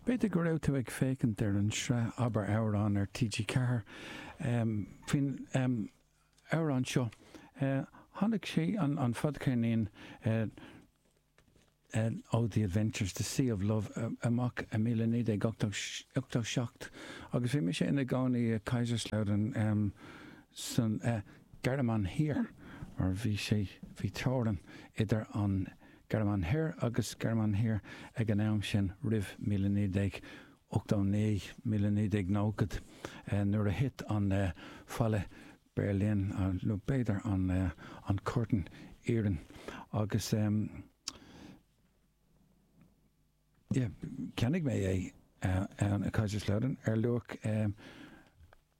B'fhéidir go raibh tú ag féachaint ar an tsraith Abair Amhrán ar TG4 faoin amhrán seo. Tháinig sé, an fadcheirnín ó The Adventures, The Sea of Love, amach i míle naoi déag ochtó seacht agus bhí mise ina gcónaí i Kaiserslautern san Ghearmáin Thiar mar bhí sé, bhí teorainn idir an. Gearmáin Thoir agus Gearmáin Thiar ag an am sin, roimh míle naoi déag ochtó naoi míle naoi déag nóchad, nuair a thit an falla Beirlín, nó b'fhéidir an curtain iarainn, agus cheannaigh mé é ann i Kaiserslautern ar luach.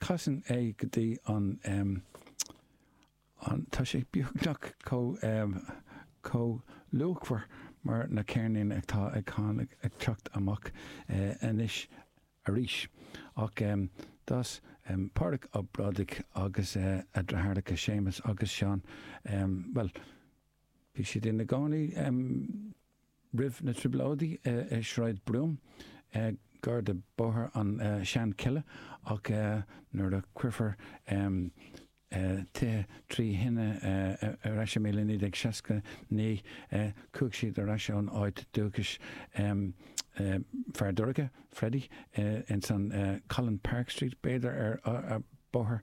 Casann é go dtí an, an, tá sé beagnach chomh, chomh luachmhar mar na ceirníní atá ag tháinig, ag teacht amach anois arís. Ach d'fhás Pádraig Ó Brádaigh agus a dheartháireacha Séamus agus Seán, bhuel, bhí siad ina gcónaí, Roimh na Trioblóidí i Sráid Brún, gar do Bhóthar an tSeanchille, ach nuair a cuirfear tithe trí thine ar ais i míle naoi déag seasca naoi, chuaigh siad ar ais ón áit dúchais, Feardorcha, Freddie, ins an Colinpark Street, b'fhéidir, ar Bhóthar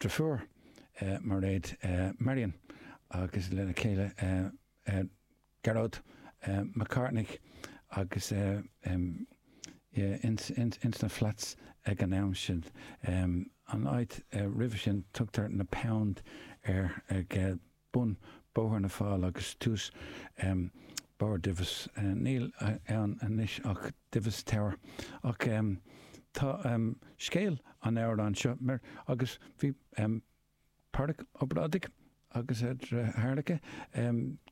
dheirfiúr Mairéad Marion agus lena céile Gearóid Mac Cárthaigh agus ins na flats ag an am sin. An áit roimhe sin tugtar na Pound air. bun Bóthar na Fál agus tús Barr Divis. Níl ann anois ach Divis Tower. Ach tá scéal an amhráin seo mar agus bhí Pádraig Ó Brádaigh agus a dheartháireacha,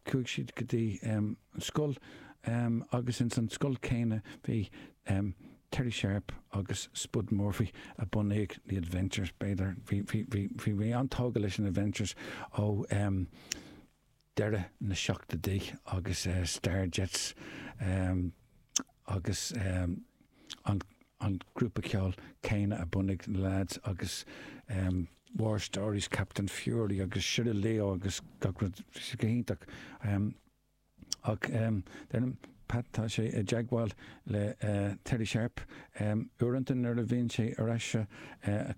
chuaigh siad go dtí an scoil agus ins an scoil chéanna bhí Terry Sharpe agus Spud Murphy a bhunaigh The Adventures, b'fhéidir. Bhí, bhí, bhí, bhí, bhí an-tógtha leis an Adventures ó em. deireadh na seachtoidí agus eh. Starjets em. agus em. an, an grúpa ceoil céanna a bhunaigh na lads agus em. War Stories, Captain Fury agus Shiraleo agus gach rud. Bhí sé go hiontach. Em. Ach, deirim, Pat, tá sé i dteagmháil le Terry Sharp uaireanta nuair a bhíonn sé ar ais sa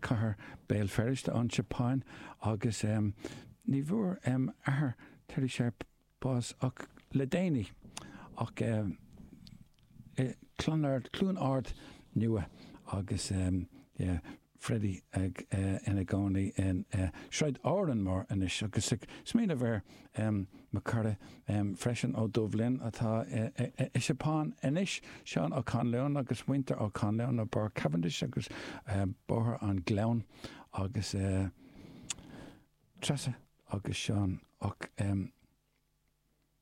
chathair Béal Feirste, ón tSeapáin, agus ní bhfuair athair Terry Sharp bás ach le déanaí. Ach. Clonard, Cluain Ard Nua agus Freddie ina gcónaí i Sráid Árainn Mhór anois agus ag smaoineamh ar Mcquariie freisin, Ó Doibhlin atá sa tSeapáin anois, Seán Ó Conalláin agus muintir Ó Conalláin i bPáirc Cavendish agus Bóthar an Ghleann agus Treasa agus Seán Ó.